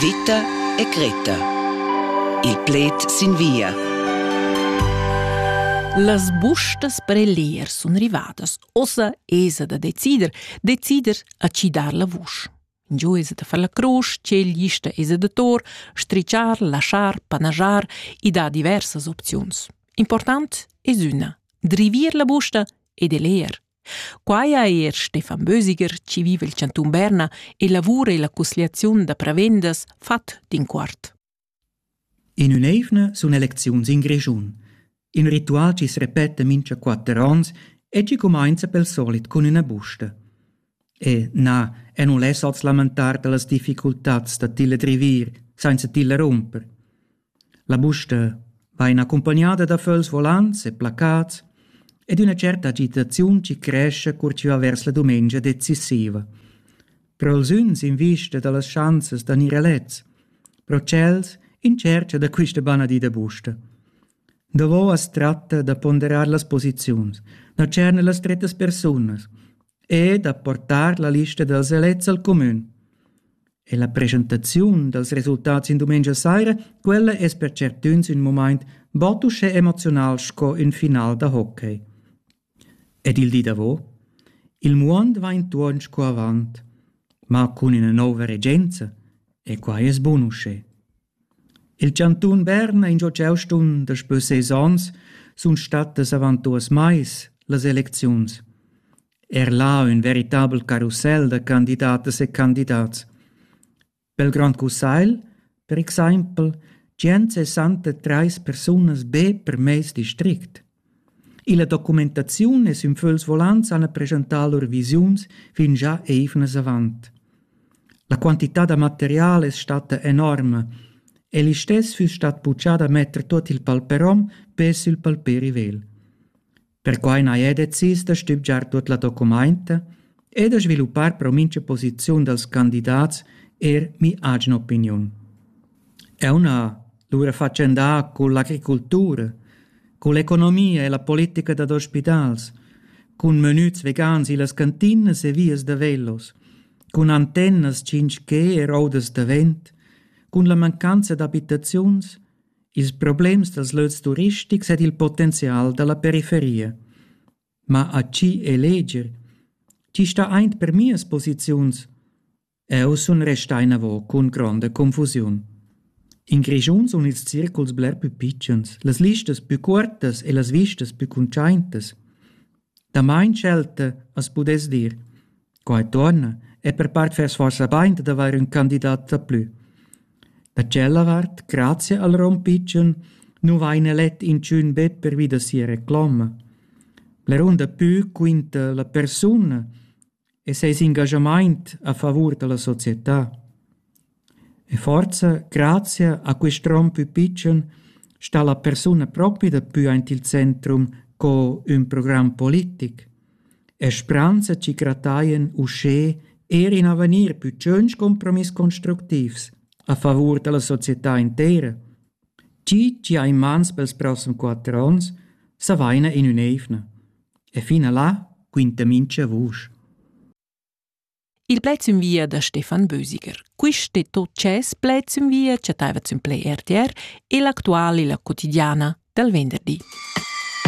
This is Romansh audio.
Vita e Greta. Il pled sin via. Las bustas per elir sun rivadas. Ossa esa da decider, decider a ci dar la vusch. Giu esa da far la crusch, tgel gista esa da tor, strichar, laschar, panajar e da diversas opziuns. Important es üna, drivir la busta ed eler, Quai ha er Stefan Bösiger, chi viva il chantun Berna e lavura illa cusgliaziun da prevendas, fat d'inquart. In ün'eivna sun elecziuns in Grischun. In ritual chi repeta mincha quatter ons e chi cumainza pel solit cun üna busta. E na, e non less als lamentar dallas difficultats da tilla drivir, sainza tilla rumper. La busta vain accumpagnada da föls volants e placats ed üna tscherta agitaziun chi crescha cur chi va vers la dumengia decisiva. Però els üns in vista da las schanzas da gnir elets, però tschels in tschercha da quista bana di da busta. Davo as tratta da ponderar las posiziuns, da tscherner las strettas persunas, e da portar la lista dals elets al cumün. E la presentaziun dals resultats in dumengia saira, quella es per certüns ün moment bod uschè emoziunal sco ün final da hockey. Ed il di davo? Il muond va intuorn sco avant, ma cun üna nouva regenza, e quai es bun uschè. Il chantun Berna ingio ch'eu sun daspö ses ons sun stattas avant duos mais las elecziuns. Er là ün veritabel carussel da candidatas e candidats. Pel Grand Cussagl, per exaimpel, tschient sessanta trais persunas be per meis district. Illa documentaziun es ün fögls volants hana preschantà lur visiuns fingià eivnas avant. La quantità da material es statta enorma e listess füss stat buchà da metter tuot il palperom be sül palperivel. Perquai n'haja decis da stübgiar tuot la documainta e da sviluppar pro mincha posiziun dals candidats eir mi'atgna opiniun. Eu n'ha lura fatschendà cun l'agricultura, cun l'economia e la politica dad ospitals, cun menüts vegans illas cantinas e vias da velos, cun antennas tschinch-ch e roudas da vent, cun la mancanza d'abitaziuns, ils problems dals lös turistics ed il potenzial da la periferia. Ma a chi eleger? Chi sta aint per mias posiziuns? Eu sun restà inavo cun gronda confusiun. In Grischun sun ils circuls bler pü pitschens, las listas pü cuortas e las vistas pü cuntschaintas. Damain schelta as pudess dir. Qua e tuorna e per part fess forsa bain dad avair ün candidat daplü. Da tschella vart, grazia al rom pitschen, nu vaina let inchün be pervi da sia recloma. Bler da pü quinta la persuna e seis engaschamaint a favur da la società. E forza grazia a quist rom pü pitschen sta la persuna propi dapü aint il centrum co ün program politic. E spranza chi grattaien uschè eir in avegnir pü tschönch compromiss constructivs a favur da la società intera. Chi chi ha in mans pels prossem quatter ons, s'avaina in ün'eivna. E fin a là quinta mincha vusch. Il pled sün via da Stefan Bösiger. Quist e tot tschess pled sün via chattaiva sün Play RTR e l'actual illa quotidiana dal venderdi.